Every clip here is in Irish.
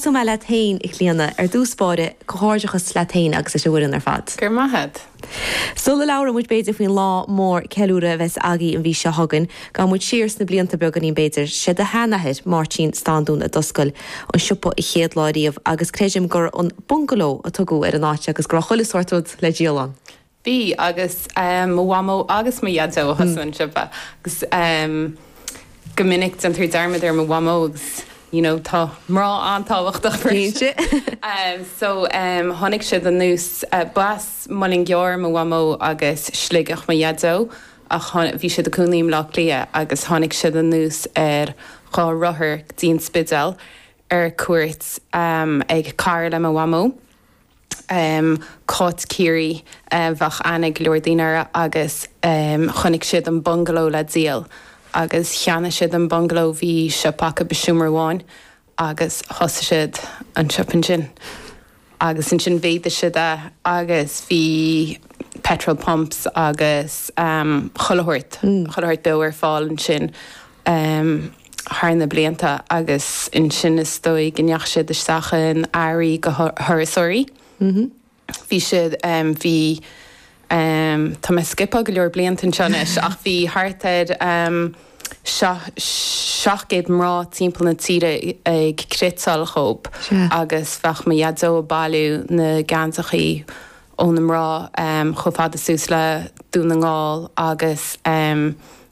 Cuma leat féin, a Chlíodhna. Ar dtús báire, comhghairdeachas leat féin agus leis an bhfoireann ar fad. Go raibh maith a't. Sula labhróidh muid b'fhéidir faoin lá mór ceiliúradh a bheas agaí an mhí seo chugainn, gabhfaidh muid siar sna blianta beagáinín b'fhéidir. Sé do sheanathair, Máirtín Standún, a d'oscail an siopa an chéad lá riamh agus creidim gur an Bungalow a tugadh ar an áit agus go raibh chuile shórt rud le díol ann. Bhí, agus mo mhamó agus mo dhaideo a thosaigh an siopa agus go minic déantar dearmad ar mo mhamó agus you know tá mná an-tábhachtach freisin so tháinig siad anuas, b'as Muileann gCearr mo mhamó agus Sligeach mo dhaideo ach bhí siad ag cónaí i mBleá Cliath agus tháinig siad anuas ar dhá rothar go dtí an Spidéal ar cuairt ag cara le mo mhamó. Cáit Chiarraí, bheadh aithne ag go leor daoine uirthi, agus chonnaic siad an bungaló le díol agus cheannaigh siad an bungaló. Bhí siopa acu i seomra amháin agus thosaigh siad an siopa ansin agus ansin mhéadaigh siad é agus bhí petrol pumps agus chuile shórt, chuile shórt beo ar fáil ansin. thar na blianta agus ansin is dóigh go ndeachaigh siad isteach in earraí do thurasóirí. Bhí siad, bhí, tá mé ag scipeáil go leor blianta anseo anois ach bhí thart ar seacht gcéad mná timpeall na tíre ag cniotáil dhóib agus bheadh mo dhaideo ag bailiú na geansachaí ó na mná chomh fada suas le Dún na nGall agus,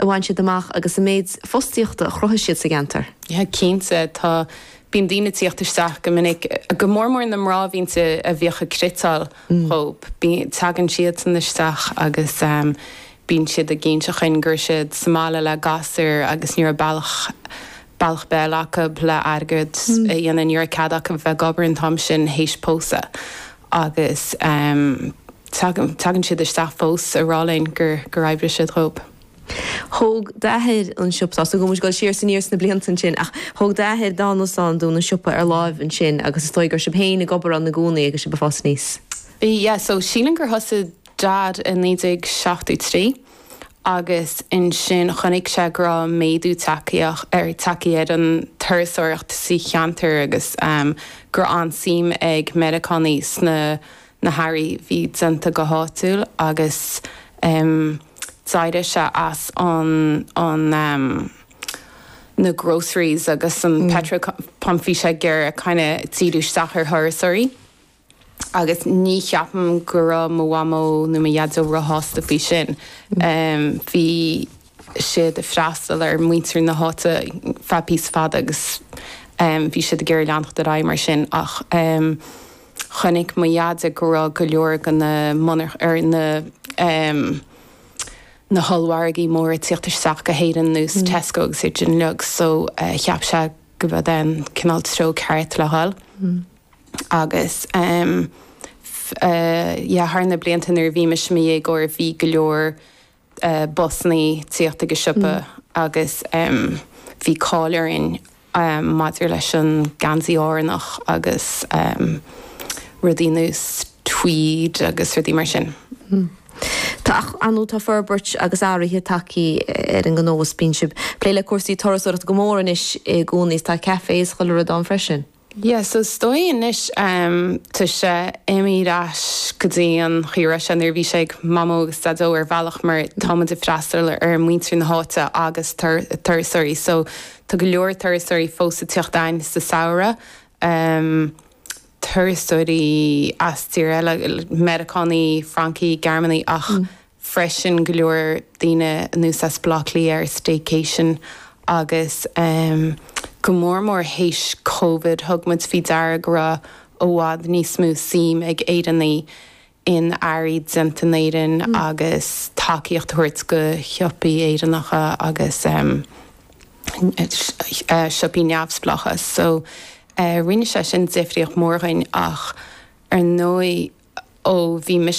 a bhain siad amach agus an méid fostaíochta a chruthaigh siad sa gceantar. Yeah, cinnte. Tá, bíonn daoine tíocht isteach go minic, go mór mór na mná bhíonn sé a bhíodh ag cniotáil dhóib. Bíonn, tagann siadsan isteach agus ehm bíonn siad ag inseacht dhúinn go raibh siad sa mbaile le gasúir agus ní raibh bealach, bealach ar bith eile acu le airgead a dhéanamh, ní raibh cead acu bheith ag obair an t-am sin th'éis pósadh agus ehm Tagann. Tagann siad isteach fós, a rá linn gur. gur oibrigh siad dhóib. Thóg d'athair an siopa. Tá a fhios agam go bhfuil muid ag dul siar is aniar sna blianta ansin, ach thóg d'athair Dónall Standún an siopa ar láimh ansin agus is dóigh go raibh sibh féin ag obair ann i gcónaí agus sibh ag fás aníos. Yeah, so sílim gur thosaigh Dad i naoi déag seachtó trí agus ansin chonaic sé go raibh méadú tagthaí ar, tagthaí ar an turasóireacht sa cheantar agus, em, go raibh an-suim ag Meiriceánaigh sna. na hearraí a bhí déanta go háitiúil agus d'éirigh sé as an an na groceries agus an petrol pump bhí sé ag kind of díriú isteach ar thurasóirí agus ní cheapaim go raibh mo mhamó ná mo dhaideo róshásta faoi sin bhí siad ag freastal ar muintir na háite ar feadh píosa fada agus bhí siad ag iarraidh leanacht ar aghaidh mar sin ach. Chonaic mo dheaide go raibh go leor de na monarcha, er, na, em, na hollmhargaí móra ag tíocht isteach go hÉirinn nós Tesco agus iad sin uilig so cheap sé go mb'é an cineál treo ceart le dhul agus, em, yeah, thar na blianta nuair a bhí mise i mo dhéagóir bhí go leor. busannaí ag tíocht ag an siopa agus bhí cáil orainn maidir leis an geansaí Árannach agus rudaí nós tweed agus rudaí mar sin. Tá an-tá forbairt agus athruithe tagthaí ar an ngnó is bíonn sibh ag plé le cúrsaí turasóireachta go mór anois i gcónaí is tá café is chuile rud ann freisin. Yeah, so is dóigh anois, em, tá sé imithe ar ais go dtí an chaoi a raibh sé nuair a bhí sé ag Mamó agus Daideo ar bhealach mar tá muid ag freastal ar muintir na háite agus tur, turasóirí so tá go leor turasóirí fós ag tíocht ann sa samhradh, em, turasóirí as tír eile, Meiriceánaigh, Francaigh, Gearmánaigh ach freisin go leor daoine anuas as Baile Átha Cliath ar staycation agus go mór mór théis Covid thug muid faoi deara go raibh i bhfad níos mó suime ag Éireannaigh in earraí déanta in Éirinn agus tacaíocht a thabhairt go shiopaí Éireannacha agus siopaí neamhspleácha so rinne sé sin difríocht mór dhuinn ach ar ndóigh ó bhí mise